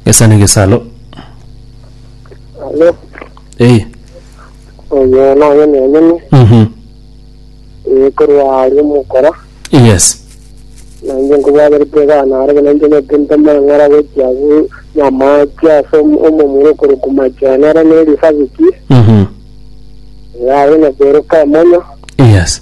Gesani gesalo. Alo, Eh. oyo naye nenyene Mhm. ekorwa aria omokora Yes. nainche nkobwaberete egana are buna inche nete ntoma eng'ora gochia gu- nyamache ase om- omomura okorokwa machene are neri sabiki Mhm. yaye nakeroka emonyo Yes.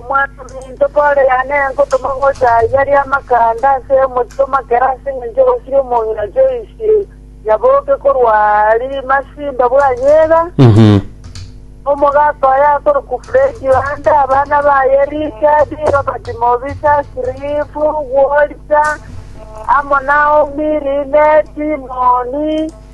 Omwanyaminto Pore yane ngotoma gocha aiga ri'amakanda ase omochie o Makeda ase engencho egosiria omong'ina Joyce Nyaboke korwa Arimasi Mbabwanyega, omogaka oye akorokwa Fred Yohanda, abana baye Richard, Robert Mobisa, Cliff, Walter, amo Naomi, Lynette, Moni,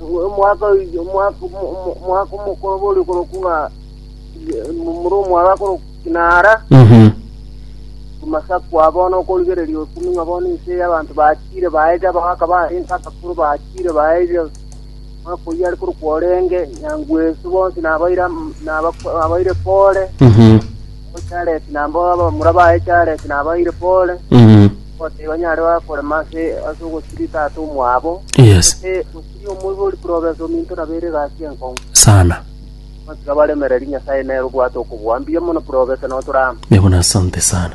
omwaka oiyo- omwaka omo- omo- omwaka omokoro bori koroku ng'a muri omwaka koroku kinara Mhm. amasaku abono okorigereria okumi ng'a bono ense y'abanto bachire baeja abagaka barenge abakoro bachire baeja omwaka oyio are koroku orenge nyangu ensu bonsi nabaire am- nabako- nabaire pore Mhm. chareti nabo abamura baye chareti nabaire pore Mhm. Gose onyare baba korema ase ase ogosiria tata omwabo, Yes. gose gosiria omoibori province ominto nabo ere egasi enkong'u. Sana. Gotiga baremereri Nyasae nere obwate okobua mbuya mono province notore amo. Nigo nasante sana.